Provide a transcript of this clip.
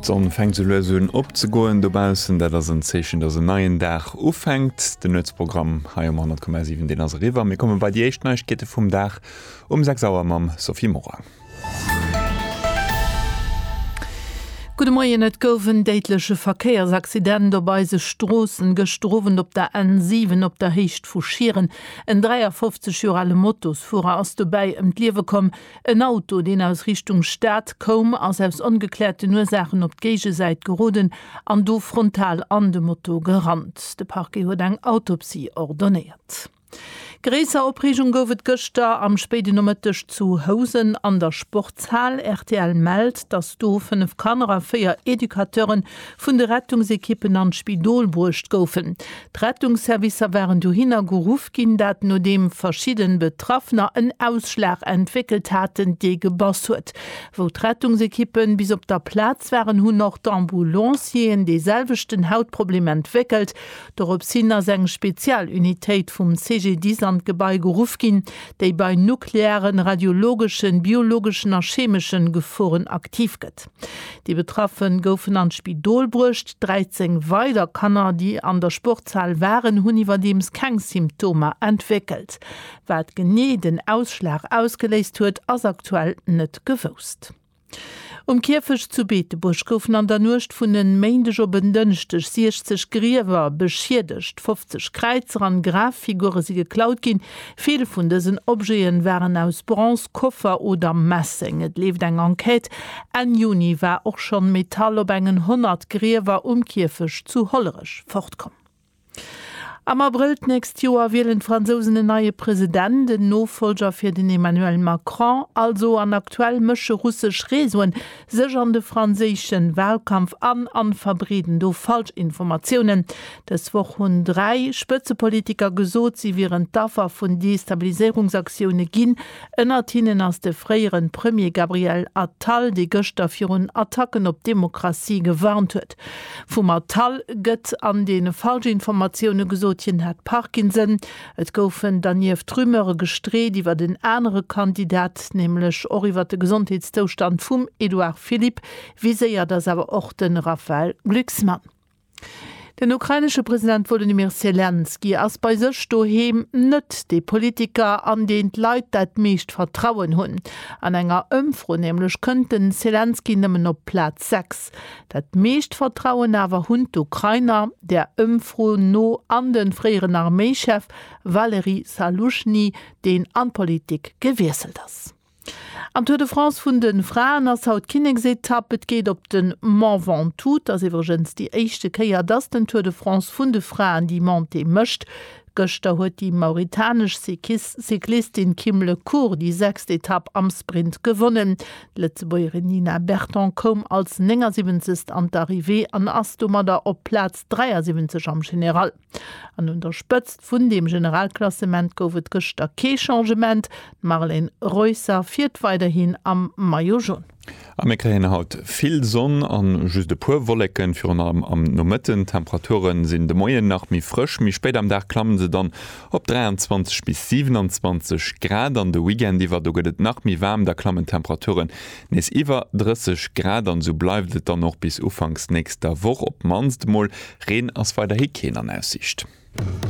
D'Sonn fänkt sou lues un opzegoen dobaussen, dat ass en Zeechen, dass en neien Dag ufänkt. Den Nuetsprogramm hei um 100,7, deen ass eriwwer. Mir komme bei déi éischt Neiegkeete vum Dag um 6 Auer mam Sophie Morang. Gudde Moien, Et gouf en déidleche Verkéiersaccident op eise Stroossen gëschter Owend op der N7 op der Héicht vu Schieren. En 53 Joer ale Motosfuerer ass dobäi ëm d'Liewe komm. En Auto, deen aus Richtung Stad koum, ass aus ongekläerten Ursaachen op d'Géigesäit geroden an do frontal an de Moto gerannt. De Parquet huet eng Autopsie ordonéiert. Gréisser Opreegung gouf et gëschter am spéiden Nomëtteg zu Housen an der Sportshal. Rtl mellt, datt do fënnef Kanner a véier Educateuren vun de Rettungsekippen an d'Spidol bruecht goufen. D'Rettungsservicer waren dohinner geruff ginn, dat nodeem verschidden Betraffener en Ausschlag entwéckelt haten, dee gebass huet. Wou d'Rettungsekippen bis op der Plaz waren, hunn och d'Ambulancieren dee selwechten Hautproblem entwéckelt. Dorops hin ass eng Spezialunitéit vum CGDIS an d'Gebai geruff ginn, déi bei nuklearen, radiologeschen, biologeschen a chemeschen Geforen aktiv gëtt. Déi Betraffe goufen an d'Spidol bruecht. 13 weider Kanner, déi an der Sportshal waren, hunn iwwerdeems keng Symptomer entwéckelt. Wat genee den Ausschlag ausgeléist huet, ass aktuell net gewousst. Um Kierfecht zu Beetebuerg goufen an der Nuecht vun en Méindeg op en Dënschdeg 60 Griewer beschiedegt. 50 Kräizer an Graffigure si geklaut ginn, Vill vun dësen Objeten waren aus Bronze, Koffer oder Messeng. Et leeft eng Enquête. Enn Juni war och schonn Metall op engen 100 Griewer um Kierfecht zu Hollerech fortkomm. Am Abrëll d'nächst Joer wielen d'Fransousen en neie President, en Nofollger fir den Emmanuel Macron also. An aktuell mësche russesch Reseauen Sech an de franséischen Wahlkampf an an verbreeden do falsch Informatiounen. Dës Woch hunn 3 Spëtzepolitiker gesot, si wieren d'Affer vun Destabiliséierungsaktioune ginn. Ënnert hinnen ass de fréieren Premier Gabriel Attal, dee gëschter virun Attacken op d'Demokratie gewarnt huet. Vum Attal gëtt an den falsch Informatioune gesot, hien hätt Parkinson. Et goufen dernieft Rumeure gestreet iwwert en anere Kandidat, nämlech och iwwert de Gesondheetszoustand vum Edouard Philippe. Viséiert ass awer och de Raphaël Glucksmann. Den ukrainesche President Wolodymyr Selenskyj ass bei sech doheem net dee Politiker, an deen d'Leit dat meescht Vertrauen hunn. An enger Ëmfro nämlech kënnt de Selenskyj nëmmen op Plaz 6. Dat meescht Vertrauen awer hunn d'Ukrainer, der Ëmfro no, an de fréieren Arméichef Valery Zaluzhny, deen an d'Politik gewiesselt ass. Am Tour de France vun de Fraen ass haut d'Kinneksetapp. Et geet op den Mont Ventoux. Et ass iwwregens déi éischte Kéier, dass den Tour de France vun de Fraen déi Montée mécht. Gëschter huet déi mauritanesch Cyclistin Kim Le Court déi sechst Etapp am Sprint gewonnen. D'Lëtzebuergerin Nina Berton koum als 79. an d'Arrivée an ass domadder op Plaz 73 am General. An un der Spëtzt vun deem Generalklassement gouf et gëschter kee Changement, d'Marlen Reusser fiert weiderhin am Maillot Jaune. A mir kréien haut vill Sonn a just e puer Wolleken, virun allem am Nomëtten. D'Temperature sinn de Moien nach méi frësch, méi spéit am Dag klamme se dann op 23 bis 27 Grad an de Weekend iwwer. Do gëtt et nach méi waarm, da klammen d'Temperature nees iwwer 30 Grad an esou bleift et dann och bis ufanks nächster Woch. Op d'mannst emol Reen ass weiderhi keen an Aussiicht.